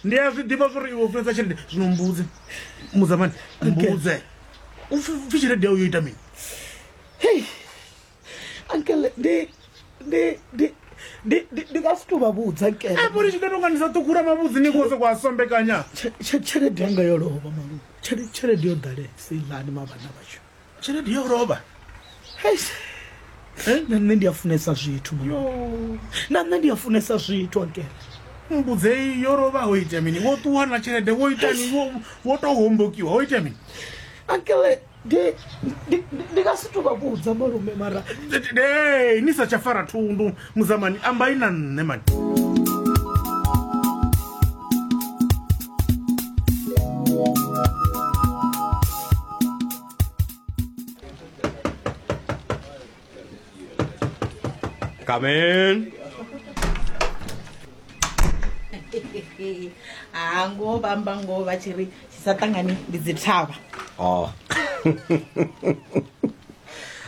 ndi a zwi ḓivha zwori iwe funesa tshelede zwino mbudze muzamani mbudze u pfi tshelede yau yo ita mini hei ankele ndi ndi ndi ndi nga si to vha vhudza nkele apo ri tshi ḓo tonga ndi sa ṱukura mavhudzi ni kose kwa sombekanya tshelede yanga yo lovha malu tshelede yo ḓalesa ilani mavhana vhashu tshelede yo lovha eh, na nṋe ndi a funesa zwithu na nṋe ndi a funesa zwithu ankele mbudzei yo lovha ho ita mini wo ṱuwa na tshelede wo ita ni wo to hombokiwa ho ita mini ankele ndi nga si to vha vhudza malume mara ni sa tsha fara thundu Muzamani ambai na nṋe mani. Come in. ha ngoho vha amba ngoho vha tshi ri tshi sa ṱangani ndi dzi thavha Oh.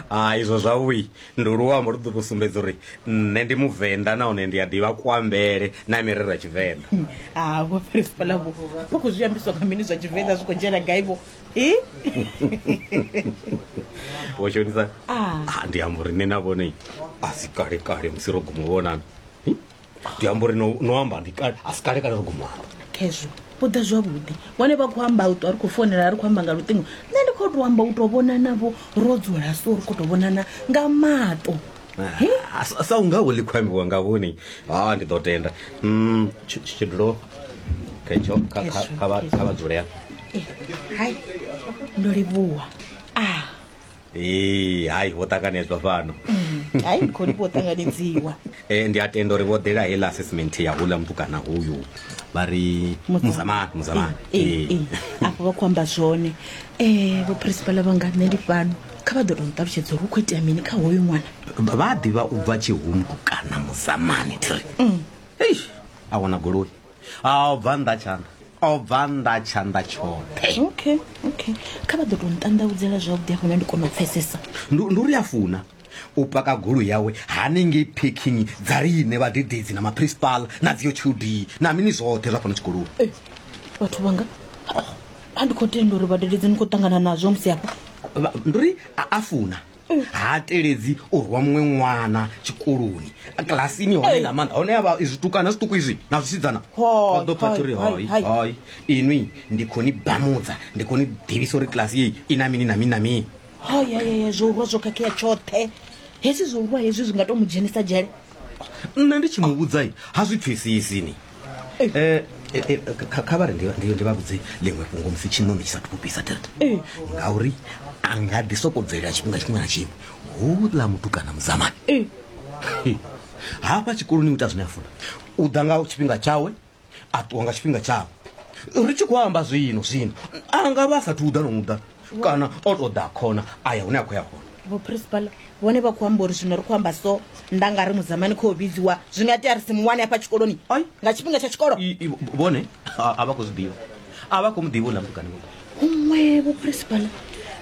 ah izwo zwavhui Ndi luambo lu ḓo tou sumbedza uri nṋe ndi muvenḓa nahone ndi a ḓivha kuambele na mirero ya tshivenḓa. Ha vho Phirispala vho vho khou zwi ambiswa nga mini zwa tshivenḓa zwi khou dzhena gai vho? Hi. Vho Shonisa, ah ndi amba uri nṋe na vhone a si kale kale musi ro guma u vhonana. ndi amba uri no no amba ndi kale a si kale kale ri khou muamba khezwo u ḓa zwavhuḓi vhone vha khou amba u ṱwa ri khou fonela ri khou amba nga luṱingo nṋe ndi khou tou amba u tou vhonanavho ro dzula so ri khou tou vhonana nga maṱo He? Ah, sa- sa unga wo ḽi khou ambiwa nga vhoni ha ndi ḓo tenda Mm, tshi- tshi- tshidulo khetsho kha- kha- Khezwo, kha vha- khezwo. kha vha dzule ya Eh, hai ndo livhuwa a ee hai vho ṱanganedzwa fhano hai khoni vho ṱanganedziwa e ndi a tenda uri vho ḓela hela assessment ya hula muthu kana huyu vha ri muzamani muzamani ee ee afho vha khou amba zwone um vho principala vhanga nṋe ndi fhano kha vha ḓo tou nṱalutshedza uri hu khou itea mini kha hoyu ṅwana vha a ḓivha u bva tshihumbu kana muzamani thiri eish a wana goloi a o bva nnḓa tshanḓa o bva nnḓa tshanḓa tshoṱhe okay okay kha vha ḓo tou nṱanḓaudzela zwavhuḓi hafho na ndi kona u pfesesa Ndu- ndi uri a funa u paka golo yawe hanengei parking dza riṋe vhadededzi na maprincipala na dziyo tshudi na mini zwoṱhe zwa fhano tshikoloni Eh, vhathu vhanga a ndi khou tenda uri vhadededzi ni khou ṱangana nazwo musi hafha Vha- ndi uri a a funa ha teledzi u rwa muṅwe ṅwana tshikoloni kilasini hone nga maanḓa hone avha zwitukana zwiṱuku izwi na zwisidzana vha ḓo phatha uri hoi hoi inwi ndi khou ni bamudza ndi khou ni ḓivhisa uri kilasi yeyi i na mini na mini na mini hayayaya zwo urwa zwo khakhea tshoṱhe hezwi zwo urwa hezwi zwi nga to mu dzhenisa dzhele nṋe ndi tshi mu vhudza ha zwi pfesesi ni eh, eh, eh, kha vhare ndi vha vhudze ḽiṅwe fhungo musi tshiṋoni tshi sa thu kupisa thelete ngauri a nga ḓi soko bvelela tshifhinga tshiṅwe na tshiṅwe houḽa mutukana muzamani hafha tshikoloni u ita zwine a funa u ḓa nga tshifhinga tshawe a ṱuwa nga tshifhinga tshawe ri tshi khou amba zwino zwino a nga vha a sathu uḓa nomuḓa kana o to ḓa khona a ya hune a khou ya hone vho principal vhone vha khou amba uri zwino ri khou amba so nda nga ri mudzamani khou vhidziwa zwi nga tea ri si muwane hafha tshikoloni nga tshifhinga tsha tshikolo vhone a vha khou zwi ḓivha a vha khou mu ḓivha u ḽa mutukani huṅwe vhuprinsipala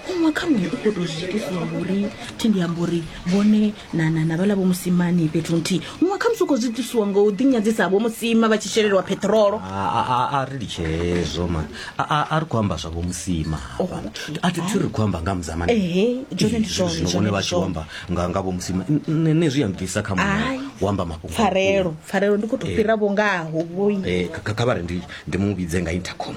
huṅwe kha muṅwe u khou tou zwi itisa ngori thi ndi amba uri vhone na na na vhala vho musimani fhethu nthihi huṅwe kha musi u khou zwi itisiwa ngo u ḓinyadzisa vho musima vha tshi shelelwa peṱirolo A- a- a- a ri litshe hezwo mani A- a a ri khou amba zwavho musima hafha. a thi thi ri khou amba nga mudzamani Ehe, dzone ndi zwone, zwino dzone vhone ndi vha tshi zwone. amba nga nga vho musima N- nṋe nṋe zwi a mbvisa kha muṅwe Ai. u amba mafhungo pfarelo pfarelo ndi khou tou fhira vho ngaho vhoi Eh, kha- kha kha vha ri ndi ndi mu vhidze nga intercom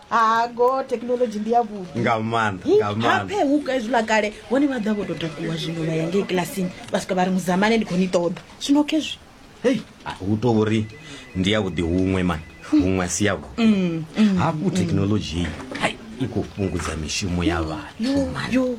ha go thekhinolodzhi ndi ya vhuḓi nga maanḓa nga maanḓa hape huka hezwiḽa kale vhone vha ḓa vho tou takuwa zwino vha ya ngei kilasini vha swika vha ri muzamane ndi khou ni ṱoḓa zwino khezwi hei a, hu to uri ndi ya vhuḓi huṅwe mani huṅwe a si ya vhuḓi Mm, mm, hafhu thekhinolodzhi iyi hai i khou fhungudza mishumo ya vhathu yo